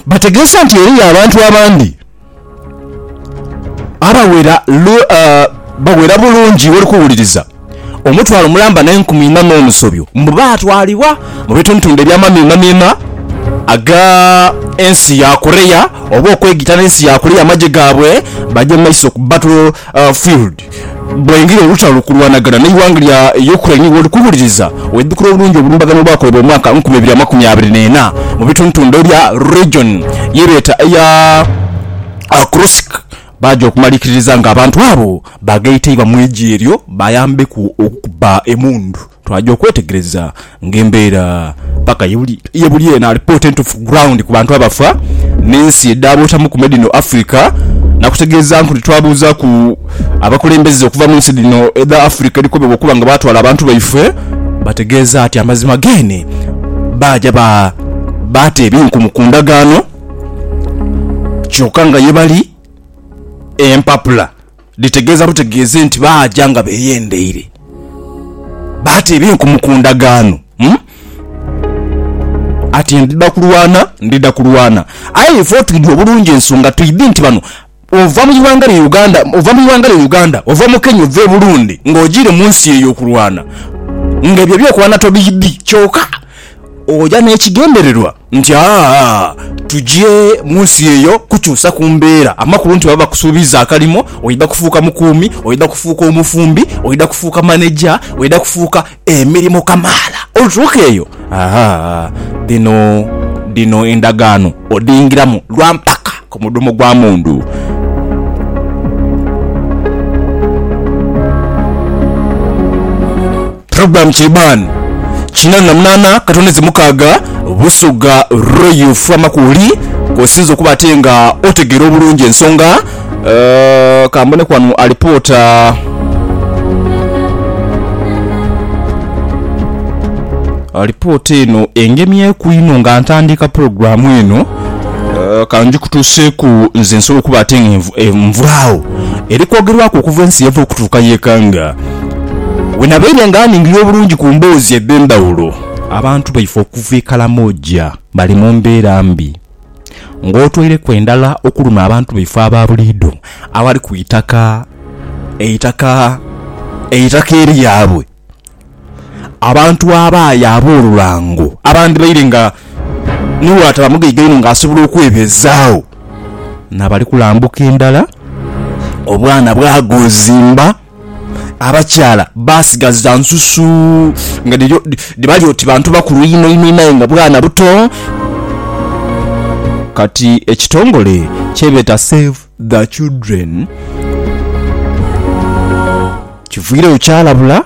Bategeesa nti eriyo abantu abandi abawera bawera bulungi woli kuwuliriza omutwalo mulamba n'enkumi inha n'omusobyo mbu baatwalibwa mu bitundutundu eby'amamiimamiima aga ensi ya Korea oba okwegita n'ensi ya Korea amagye gaabwe baje mu maiso ku battlefield. Bwengila olutalo kulwanagana n'eighanga lya Ukraine woli kuwuliriza, weidhukira obulungi obulumbaganho obwakolebwa mu mwaka nkumi ibiri amakumi abiri n'ena mu bitundutundhu ebya region yebeeta eya Kursk baaja okumalikiririza nga abantu abo bagheeteibwa mu igi eryo bayambeku okukuba emundu. Twaja okwetegereza nga embeera paka ye buli eno alipoota entufu ku ground ku bantu abafa n'ensi edhaabuutamuku me dhino Africa nakutegeezanku nti twabuuzaku abakulembeze okuva munsi dhino edha Africa edhikobebwa okuba nga baatwala abantu baife bategeeza ati amazima geene baaja baata ebinkumu ku ndagaano kyoka nga ye bali empapula Dhitegeeza butegeeze nti baaja nga beeyendeire, baateeba enkumu ku ndagaano. Ati, Ndidha kulwana, ndidha kulwana. Aye ife otwidhi obulungi ensonga twidhi nti bano ova mu ighanga lya Uganda, ova mu ighanga lya Uganda, ova mu Kenya, ova e Burundi ng'ojiire mu nsi eyo okulwana, ng'ebyo eby'okulwana tobiidhi kyoka oja n'ekigendererwa. nti aa tugye mu nsi eyo kukyusa ku mbeera, amakulu nti baba bakusuubiza akalimo, oidha kufuuka mukuumi, oidha kufuuka omufumbi, oidha kufuuka maneja, oidha kufuuka emirimo kamaala. Olutuuka eyo, aa dhino dhino endagaano odhiingiramu lwa mpaka ku mudhomo gwa mundu. Program Kiriban kinana na munana katondeze mukaga Busoga Royal Fama kwoli kwosinze okuba ate nga otegera obulungi ensonga uh, kambone kwanu alipoota alipoota eno engemyeku inho nga ntandiika pulogulaamu eno eh, kanjikutuuseeku nze nsobola okuba ate nga envu- envulaawo eri kwogerwaku okuva ensi yava okutuuka yekanga Bwe nabaire nga ningirira obulungi ku mboozi edh'endhawulo, abantu baife okuva e Karamoja bali mu mbeera mbi, ng'otoireku endala okuluma abantu baife aba buliidho abali ku itaka, eitaka, eitaka eryabwe. Abantu abaaye ab'olulango abandhibaire nga ni bw'ataba mugaiga inho ng'asobola okwebeezaagho, na bali kulambuka endala, obwana bwagoozimba. Abakyala baasigaza nsusu nga dhibali oti bantu bakulu inho inho inho aye nga bwana buto. Kati ekitongole kyebeeta Save the Children kiviireyo kyalabula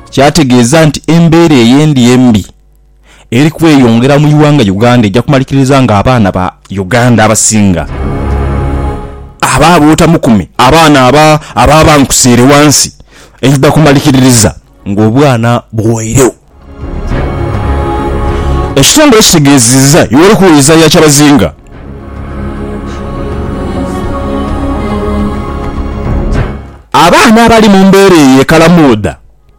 kyategeeza nti embeera eyo endi embi eri kweyongera mu ighanga Uganda eja kumalikiriza nga abaana ba Uganda abasinga aba bootamukume abaana aba aba bankusiire wansi eidha kumalikiririza nga obwana buweiregho. Ekitongole kitegeeziza Yoweri Kaguta Museveni ya Kyabazinga. Abaana abali mu mbeera eyo e Kalamoodha.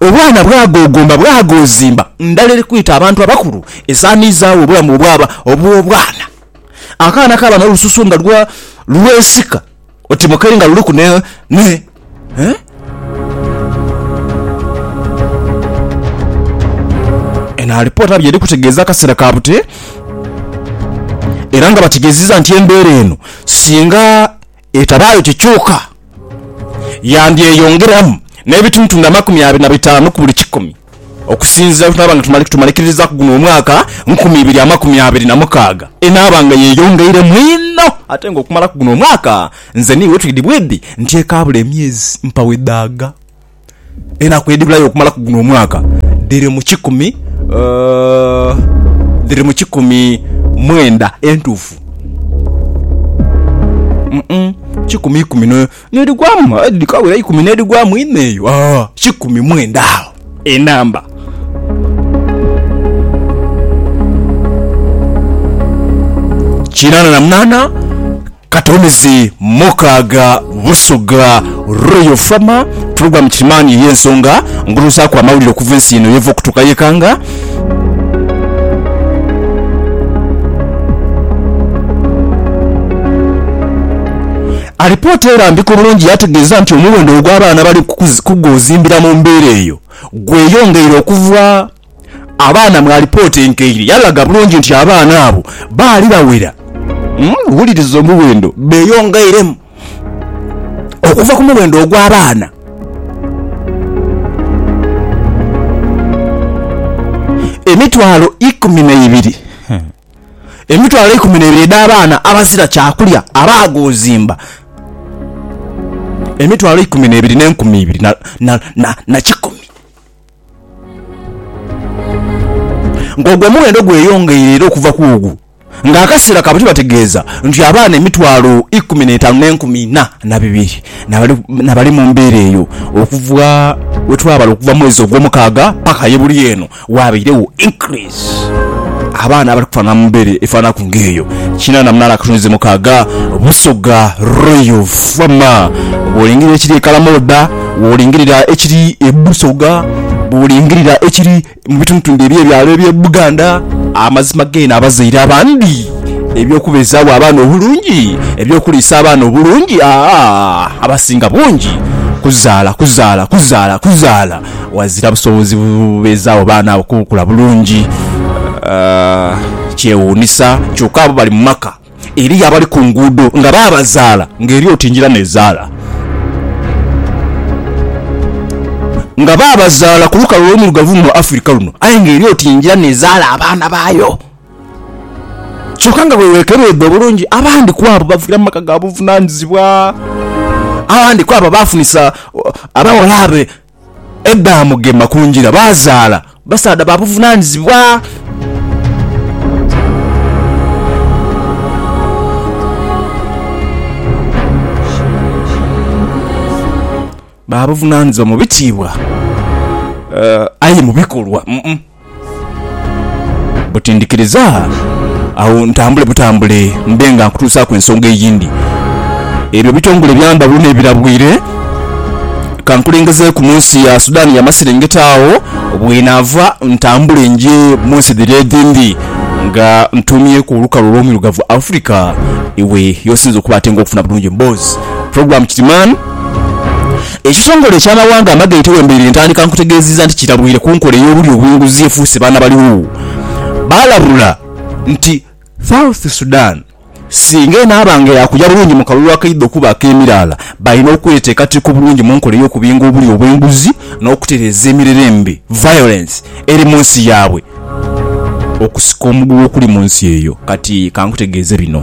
Obwana bwagogomba bwagozimba, ndala eri kwita abantu abakulu esaamiizaawo obulamu obwaba obw'obwana. Akaana kaaba n'olususu nga lwa lwesika oti mukeri nga luliku ne, ne, eh? Eno alipoota by'eri kutegeeza akaseera ka bute era nga bategeezezza nti embeera eno singa Etabaayo kikyuka, yandyeyongeramu n'ebitundutundu amakumi abiri na bitaanu ku buli kikumi, okusinziira bwe tunaaba nga tumalirizaku guno omwaka nkumi ibiri amakumi abiri na mukaaga. Enaaba nga yeeyongeiremu inho ate nga okumalaku guno omwaka nze n'iwe twidhi bwidhi nti ekaabula emyezi mpawo edhaaga. Enaku edhibulayo okumalaku guno omwaka dhiri mu kikumi dhiri mu kikumi mwenda entuufu kikumi ikumi n'edhigwamu aye dhikawera eikumi n'edhigwamu inho eyo kikumi mwenda agho enamba. Kinaana na munaana. Kati omizi mukaaga Busoga Royal Farmer Program Kirimani ey'ensonga nguluzaaku amawulire okuva ensi eno yeva okutuuka yekanga. Alipoota erambika obulungi yategeeza nti omuwendo ogw'abaana abali kuguzimbira mu mbeera eyo gweyongeire okuva. Abaana mu alipoota enkaire yalaga bulungi nti abaana abo baali bawera. Wuliriza omuwendo beeyongeiremu okuva ku muwendo ogw'abaana emitwalo ikumi n'eibiri. Emitwalo ikumi n'eibiri edh'abaana abazira kyakulya abaagoozimba emitwalo ikumi n'eibiri n'enkumi ibiri na kikumi. Ng'ogwo omughendo gweyongeire era okuva ku ogwo nga akaseera kaabwe tibategeeza nti abaana emitwalo ikumi n'etaanu n'enkumi ina na bibiri n'abali mu mbeera eyo okuva we twabala okuva mwezi Ogwomukaaga paka ye buli eno waabairegho increase. abaana abali kufanana mu mbeere efananaku ng'eyo. Kinana munaana akatunzi mukaaga Busoga Royal Farmer. Bw'olingirira ekiri e Kalamoda, bw'olingirira ekiri e Busoga, bw'olingirira ekiri mu bitundutundu eby'ebyalo eby'e Buganda, amazima geene abazaire abandi eby'okubeezaagho abaana obulungi, eby'okuliisa abaana obulungi, aa, abasinga bungi kuzaala, kuzaala, kuzaala, kuzaala. ghazira busobozi bubeezaawo baana abo kukula bulungi. Kyewuunisa kyoka abo bali mu maka. Eriyo abali ku nguudo nga baabazaala ng'eri oti njira n'ezaala. Nga baabazaala ku lukalu olwo luirugavu luno Afirika luno aye ng'eri oti njira n'ezaala abaana baayo. Kyoka nga bwe weekebedha obulungi, abandi ku abo baviira mu maka ga buvunaanyizibwa. Abandi ku abo baafunisa abaghalaabe edhaamugema ku ngira, baazaala basaadha ba buvunaanyizibwa. Ba buvunaanyizibwa mu bitiibwa, aye mu bikolwa. Buti ndhikiriza agho ntambule butambule mbe nga nkutuusaaku ensonga eyindi. Ebyo ebitongole bya ndhawulo n'ebirabwire ka nkulengezeeku mu nsi ya Sudan yamaserengeta agho bwenaava ntambule nje mu nsi dhiri edhindi nga ntuumyeku olukalu olw'omwirugavu Africa iwe y'osinze okuba ate nga okufuna bulungi emboozi. Program kiti man. Ekitongole eky'amawanga amagaite wembereire ntandika nkutegeziza nti kitabwire kunkola eyobulyo obwenguzi efuuse baana baligho. Balabula nti South Sudan singa enaaba nga yakuja bulungi mukalulu akaidha okuba akemiraala, balina okwetekateka obulungi munkola eyokubinga obulyo obwenguzi nokutereza emirere embi, violence, eri munsi yabwe. Okusika omuguwa okuli munsi eyo kati kankutegeeze bino.